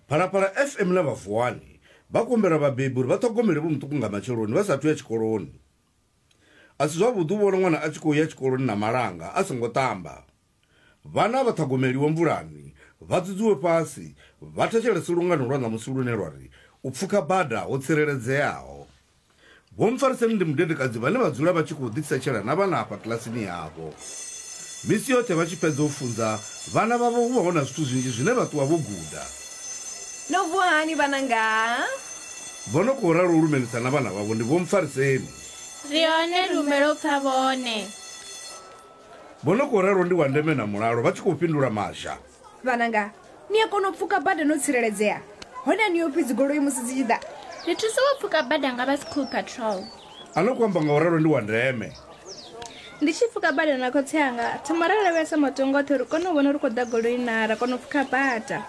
phalaphala fm na vhavuwani vha kumbela vhabebi uri vha ṱhogomele vho muṱuku nga matsheloni vha sathu ya tshikoloni a si zwavhuḓi u vhona ṅwana a tshi khou ya tshikoloni na malanga a songo ṱamba vhana vha ṱhogomeliwe mvulani vha dzudzuwe fhasi vha thetshelese lungano lwa ṋamusi lune lwa ri u pfuka bada ho tsireledzeaho Vho Mpfariseni ndi mudedekadzi vhane vha dzula vha tshi khou ḓitsetshela na vhana afha kilasini yavho. Misi yoṱhe vha tshi fhedza u funza vhana vhavho hu vha hu na zwithu zwinzhi zwine vha ṱuwa vho guda. No vuwa hani vhananga? Vho no khou ralo u lumelisa na vhana vhavho ndi Vho Mpfariseni. Ri hone ri humbela u pfa vhone. Vho no khou ralo ndi Wandeme na Mulalo vha tshi khou fhindula Mazha. vhananga ni a kona u pfuka bada no tsireledzea hone a ni yo pfi dzigoloi musi dzi tshi ḓa ri thusa wo pfuka bada nga vha school patrol a no ku amba nga u ralo ndi wa ndeme ndi tshi pfuka bada na khotsi anga thoma ra lavhelesa matongo oṱhe uri kone u vhona ri khou ḓa goloi na ra kona u pfuka bada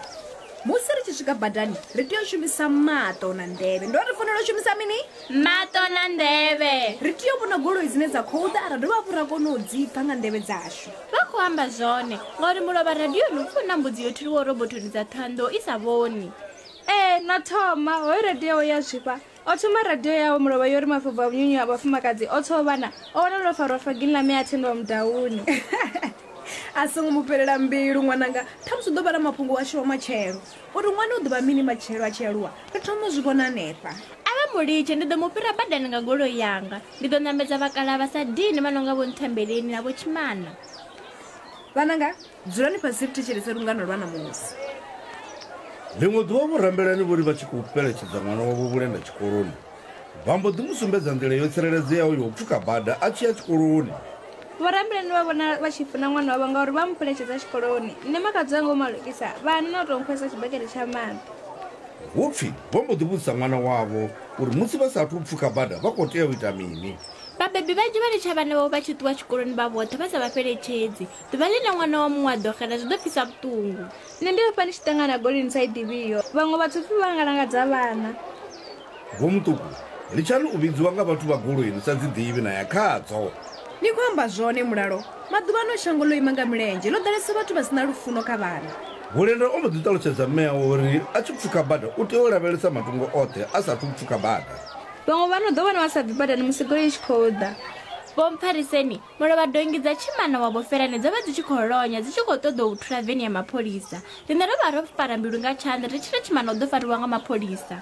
musi ri tshi swika badani ri tea u shumisa maṱo na nḓevhe ndo ri fanela u shumisa mini maṱo na nḓevhe ri tea u vhona goloi dzine dza khou ḓa ra dovha hafhu ra kone u dzipfa nga nḓevhe dzashu vha khou amba zwone ngauri mulovha radioni u funa mbudzi yo thiliwaho robothoni dza thoando i sa vhoni ee na thoma hoyo radio ya zwifha o thoma radio yawe mulovha yo ri mafobva vhunyunyu ha vhafumakadzi o tsoo vhana o wana lwo farwa fagini ḽa mea thendwa mudauni a songo mu fhelela mbilu ṅwananga ṱhamusi u ḓo vha na mafhungo washu wa matshelo Uri ṅwana u ḓo vha mini matshelo a tshi aluwa, ri thoma u zwi vhona hanefha. A vha mu litshe, ndi ḓo mu fhira badani nga goloi yanga. Ndi ḓo ṋamedza vhakalaha vha sa dini vha no nga Vho Nthembeleni na Vho Tshimana. Vhananga, dzulani fhasi ri thetshelese lungano lwa ṋamusi. Ḽiṅwe ḓuvha vho Rambelani vho ri vha tshi khou fheletshedza ṅwana wavho Vhulenda tshikoloni, Vha mbo ḓi mu sumbedza nḓila yo tsireledzeaho ya u pfuka bada a tshi ya tshikoloni. Vhorabulani vha vhona vha tshi funa ṅwana wavho ngauri vha mu fheletshedza tshikoloni. Nṋe makhadzi wanga u malukisa, vha hana na u tou nkhwesa tshibakete tsha maḓi. Hu pfi vho mbo ḓi vhudzisa ṅwana wavho uri musi vha sa athu u pfuka bada vha khou tea u ita mini. Vhabebi vhanzhi vha litsha vhana vhavho vha tshi ṱuwa tshikoloni vha vhoṱhe vha sa vha fheletshedzi. Ḓuvha ḽine ṅwana wa muṅwe a ḓo xela zwi ḓo pfisa vhuṱungu. Nṋe ndi hafha ndi tshi ṱangana na goli ni sa i ḓivhiho. Vhaṅwe vhathu pfi vha nga langadza vhana. Vho Muṱuku, litshani u vhidziwa nga vhathu vha goloi ni sa dzi ḓivhi na ya khadzo. Ni khou amba zwone Mulalo, maḓuvhano shango ḽo ima nga milenzhe, ḽo ḓalesa vhathu vha si na lufuno kha vhana. Bulenda o mbo ḓi ṱalutshedza mme awe uri a tshi pfuka bada u tea u lavhelesa matungo oṱhe a sa athu u pfuka bada. Vhaṅwe vha no ḓo vhona vha sa bvi badani musi goloi i tshi khou ḓa. Vho Mphariseni Mulovha donngi dza tshimana wa Vhofelane dzo vha dzi tshi khou lonya dzi tshi khou ṱoḓou thula veni ya mapholisa. Riṋe ro vha ro fara mbilu nga tshanḓa ri tshi ri tshimana u ḓo fariwa nga mapholisa.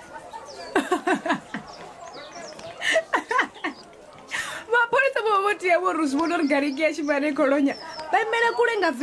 Mapholisa vho vha vho tea vho ri zwi vhona uri gariki ya tshimana i khou lonya vha imela kule nga veni.